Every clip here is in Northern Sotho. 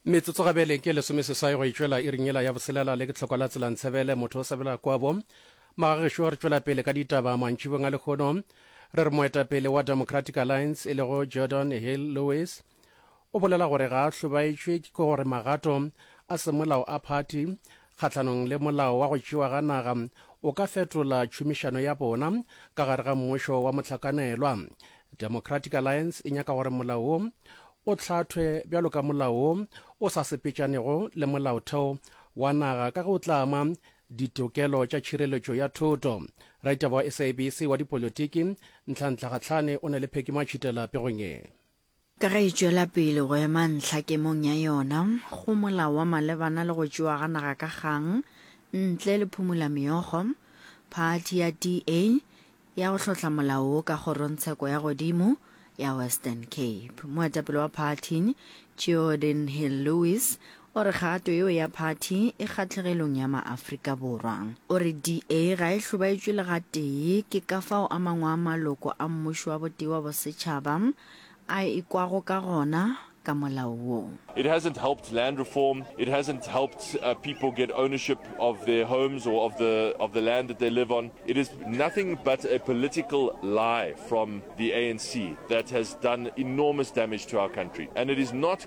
metsotso gabele ke lesome seswai go e tšwela e ringela ya boselela le ke tlhokwa la tselantshebele motho o sabela kwabo magagešo re tšwela pele ka ditaba mantšhibong a lekgono re re moetapele wa democratic alliance e lego jordan hill lewis o bolela gore ga a hlobaetšwe ke gore magato a semolao a phathi kgahlanong le molao wa go tšewa ga naga o ka fetola tšhomišano ya bona ka gare ga mmušo wa mohlakanelwa. Democratic Alliance e nyaka gore molao wo o hlathwe bjalo ka molao wo o sa sepetšanego le molaotheo wa naga ka ge o tla ama ditokelo tša tšhireletšo ya thoto. Raditaba wa SABC wa dipolotiki Ntlhantlha Kgatlhane o na le phekimo a tšhitela pegong ye. Ka ge e tšwela pele go ema ntlha kemong ya yona go molao wa malebana le go tšewa ga naga ka kgang ntle le phumolameokgo, phathi ya DA ya go hlotla molao wo ka kgorongtsheko ya godimo ya Western Cape. Moetapele wa phathi, Geordin Hill-Lewis, O re kgato yeo ya phathi e kgatlhegelong ya maAfrika Borwa. O re DA ga e hlobaetšwe le gatee ke ka fao a mangwe a maloko a mmušo wa botee wa bosetšhaba a e kwago ka gona ka molao wo. It hasn't helped land reform, it hasn't helped people get ownership of their homes or of the of the land that they live on. It is nothing but a political lie from the ANC that has done enormous damage to our country and it is not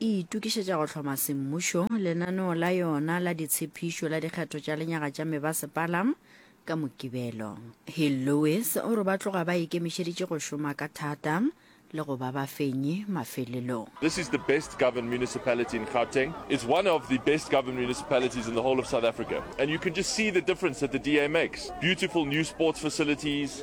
e itokišetša go hloma semmušo, lenaneo la yona la ditshephišo la dikgetho tša lenyaga tša mebasepala ka Mokibelo. Hill Lewis o re ba tloga ba ikemišeditše go šoma ka thata le go ba bafenyi mafelelong. This is the best governed municipality in Gauteng. It's one of the best governed municipalities in the whole of South Africa. And you can just see the difference that the DA makes. Beautiful new sports facilities,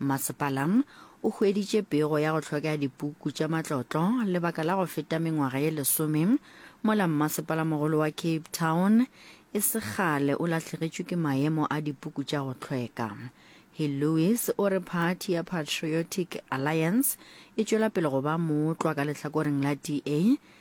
Mmasepala o hueditše pego ya go hlwekea dipuku tša matlotlo lebaka la go feta mengwaga ye lesome mola mmasepalamogolo wa Cape Town e se kgale o lahlegetšwe ke maemo a dipuku tša go hlweka. He Lewis o re phathi ya Patriotic Alliance e tšwela pele go ba mootlwa ka lehlakoreng la DA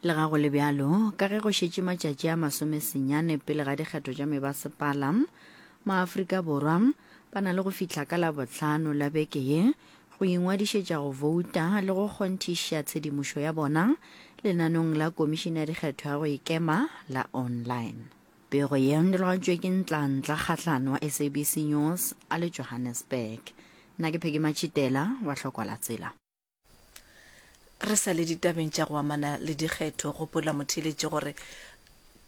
Lega go le bjalo, ka ge go šetše matšatši a masomesenyane pele ga dikgetho tša mebasepala, maAfrika Borwa ba na le go fihla ka Labohlano la beke ye go ingwadišetša go vouta le go kgonthiša tshedimošo ya bona lenanong la Komišene ya Dikgetho ya go Ikema la online. Pego ye e dirigatšwe ke Ntlantla Kgatlana wa SABC News a le Johannesburg. Nna ke Peggy Matšhitela wa Hlokwalatsela. Re sa le ditabeng tša go amana le dikgetho, gopola motheeletši gore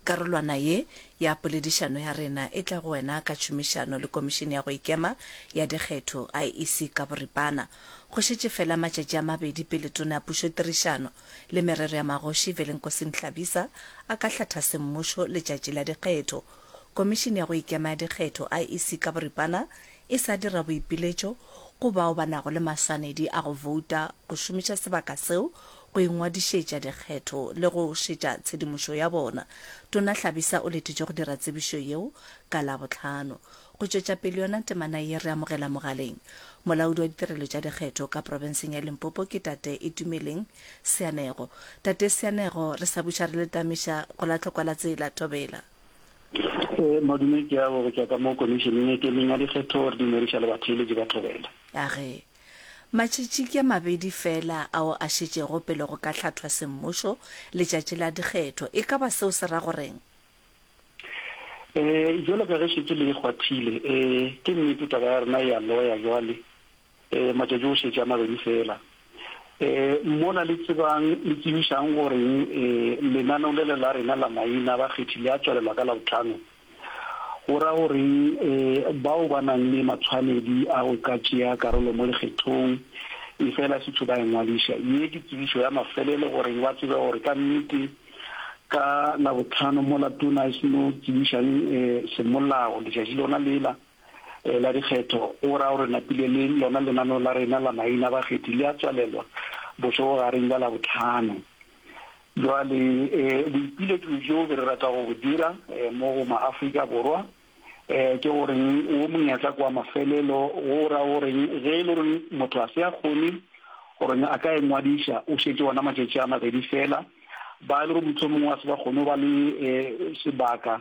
karolwana ye ya poledišano ya rena e tla go wena ka tšhomišano le Komišene ya go Ikema ya Dikgetho, IEC, ka boripana. Go šetše feela matšatši a mabedi pele Tona ya Pušotirišano le Merero ya Magoši, Velenkosi Mhlabisa, a ka hlatha semmušo letšatši la dikgetho. Komišene ya go Ikema ya Dikgetho, IEC, ka boripana e sa dira boipiletšo go bao ba nago le maswanedi a go bouta, go šomiša sebaka seo go ingwadišetša dikgetho le go šetša tshedimošo ya bona. Tona Hlabisa o letitšwe go dira tsebišo yeo ka Labohlano. Go tšwetša pele yona temana ye re amogela mogaleng molaodi wa ditirelo tša dikgetho ka profenseng ya Limpopo ke Tate Itumeleng Seanego. Tate Seanego, re sa buša re letamiša go la tlhokwela tsela, thobela. Eh, madume ke ya go tšwa ka mo komišeneng e kemeng ya dikgetho gore di ngwediša le batheeletši ba thobela ya ge matšatši ke a mabedi fela ao a šetšego pele go ka hlathwa semmušo letšatši la dikgetho e ka ba seo se ra goreng um jalo ka ge šetše le e kgwathile um ke nnete taba ya rena e a loya jwale Ee, matšatši go šetše a mabedi feela. Ee, mola le tsebang, le tsebišang goreng, ee, lenaneo lele la rena la maina a bakgethi le a tswalelwa ka Labohlano, go ra goreng, ee, bao ba nang le matshwanedi a go ka tšea karolo mo lekgethong, efela setho ba engwadiša. Ye ke tsebišo ya mafelelo goreng ba tsebe gore ka nnete ka Labohlano mola Tona e seno tsebišang, ee, semolao letšatši lona lela, la dikgetho o ra gore napile le lona lenaneo la rena la maina bakgethi le a tswalelwa bošogogareng bja Labohlano. Jwale boipiletšo bjo re rata go bo dira mo go maAfrika Borwa ke goreng wo monyetla kwa mafelelo go ra goreng ge e le gore motho a se a kgone gore a ka engwadiša o šetše ona matšatši a mabedi fela ba e le gore mohlomongwe a se ba kgone go ba le sebaka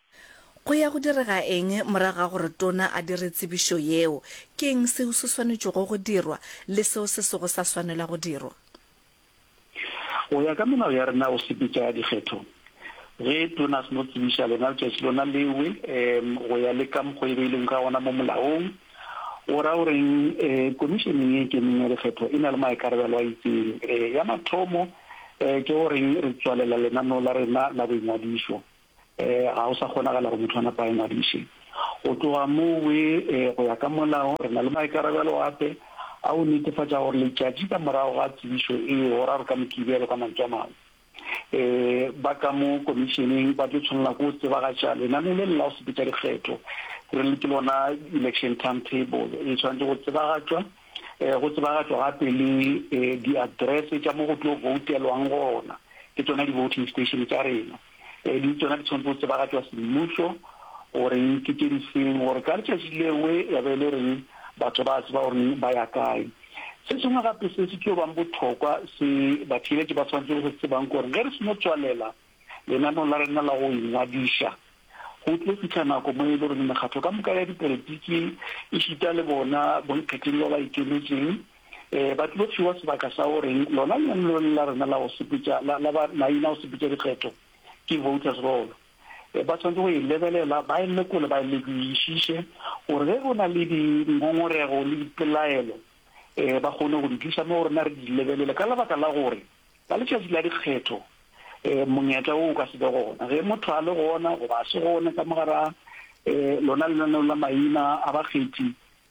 Go ya go direga eng morago ga gore tona a dire tsebišo yeo? Ke'ng seo se swanetšego go dirwa le seo se sego sa swanela go dirwa? Go ya ka melao ya rena o sepetša ya dikgetho, ge tona a se no tsebiša lena letšatši lona lewe go ya le ka mokgo e beilwego ka gona mo molaong, o ra goreng Komišeneng e Ikemeng ya Dikgetho e na le maikarabelo a itseng. Ya mathomo ke goreng re tswalela lenaneo la rena la boingwadišo. ga go sa kgonagala go motho a napa a ngwadiše go tloga moo we go ya ka molao re na le maikarabelo ape a go netefatša gore letšatši ka morago ga tsebišo e goraro ka mokibelo ka mantswe a mangwe um ba ka mo komišeneng ba tlo tshwanela ko tsebagatša lenane le lela go sepetša dikgetho re le ke lona election time table e tshwanetse go tsebagatšwa um go tsebagatšwa gape le um di-address tša mo go tlo voutelwang gona ke tsona di-voting station tša rena um le tsona di tshwanetse go tsebagatšwa semmušo goreng ke tše di seng gore ka letšatši lewe ya be e le reng batho ba tseba goreng ba ya kae se sengwe gape se se tlo bang bothokwa se batheeletši ba tshwanetse go se tsebang gore ge re seno tswalela lenaneo la rena la go ingwadiša go tlo fitlha nako mo e le goreng mekgatlo ka moka ya dipolitiki e šita le bona bonkgetheng ba ba ikemetšeng um ba tlo fiwa sebaka sa gore lona lenanelo la rena la go sepetša la ba maina go sepetša dikgetho ke voters roll eh, ba tshwanetse go e lebelela ba e lekole ba e lekoišiše gore ge go na le dingongorego le dipelaelo um ba kgone go di tlisa mo rena re di lebelele ka lebaka la gore ka letšatši la dikgetho um monyetla o o ka se be gona ge motho a le gona goba a se gone ka mogara um lona lenaneo la maina a bakgethi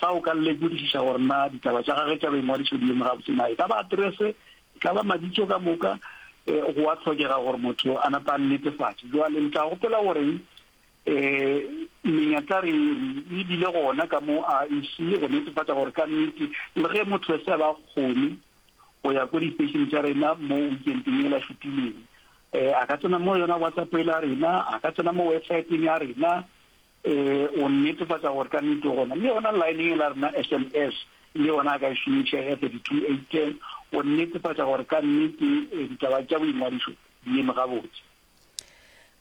Fa o ka lekodišiša gore na ditaba tša gagwe tša boingwadišo di eme gabotse, na e ka ba aterese, e ka ba mabitso ka moka, go a hlokega gore motho a napa a nnetefatše. Bjale le tla gopola gore menyatla re e bile gona ka mo IEC go netefatša gore ka nnete, le ge motho a se a ba a kgone go ya ko disteišene tša rena mo wikenteng yela e fetileng, a ka tsena mo yona WhatsApp yela ya rena, a ka tsena mo websaeteng ya rena, Ee, o nnetefatša gore ka nnete o gona. Le yona line e la rena SMS le yona a ka e šomiša ya 32810 go nnetefatša gore ka nnete eh, ditaba tša boingwadišo di eme gabotse.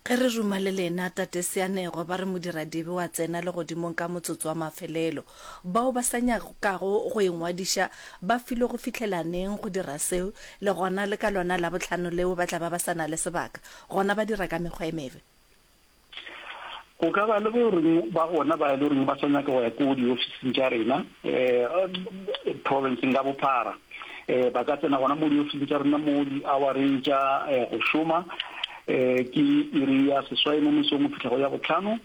Ge re ruma le lena, Tate Seanego ba re modiradibe wa tsena legodimong ka motsotso wa mafelelo. Bao ba sa nyakago go ingwadiša ba filwe go fihlela neng go dira seo, le gona le ka lona Labohlano leo ba tla ba ba sa na le sebaka, gona ba dira ka mekgwa e mebe? Go ka ba le bo reng ba gona ba e le reng ba sa nyaka go ya ko diofising tša rena um provinceng ka bophara um ba ka tsena gona mo diofising tša rena mo di-houreng tša um go šoma um ke iri ya seswai mo mesong go fitlha go ya botlhano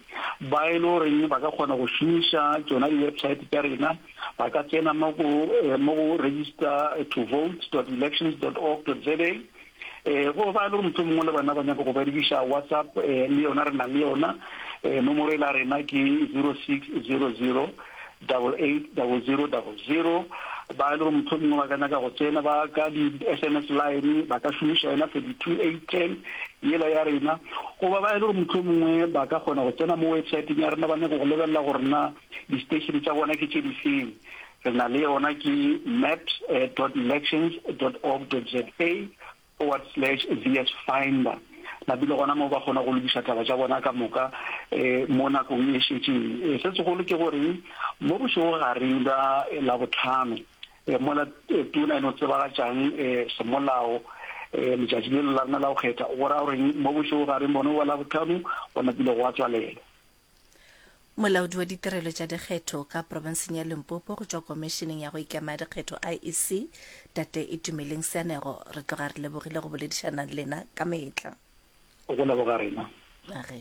ba e le reng ba ka kgona go šomiša tsona di-website tša rena ba ka tsena mo go register to vote dot elections dot org dot za um go ba le gore mohlomongwe mongwe le bana ba nyaka go berekiša WhatsApp um le yona re nang le yona um nomoro e la rena ke zero six zero zero double eight double zero double zero ba e le gore mohlomongwe ba ka nyaka go tsena ba ka di-s m s line ba ka šomiša yona thirty two eight ten yela ya rena goba ba e le gore mohlomongwe ba ka kgona go tsena mo websiteng ya rena ba nyako go lebelela gore na di-station tsa bona ke tše difeng re na le yona ke maps dot elections dot org dot za forward slash VS finder mabi le gona moo ba kgona go lokiša taba tša bona ka moka mo nakong e šetšeng. Se segolo ke gore mo bošego gareng bja Labohlano mola Tuna e no tsebagatšang semolao letšatši lelo la rena la go kgetha, go ra goreng mo bošego gareng bono bja Labohlano go napile gwa tswalelwa. Molaodi wa ditirelo tša dikgetho ka profenseng ya Limpopo go tšwa Komišeneng ya go Ikema ya Dikgetho, IEC, Tate Itumeleng Seanego, re tloga re lebogile go boledišana le lena ka mehla. Go leboga rena. A re.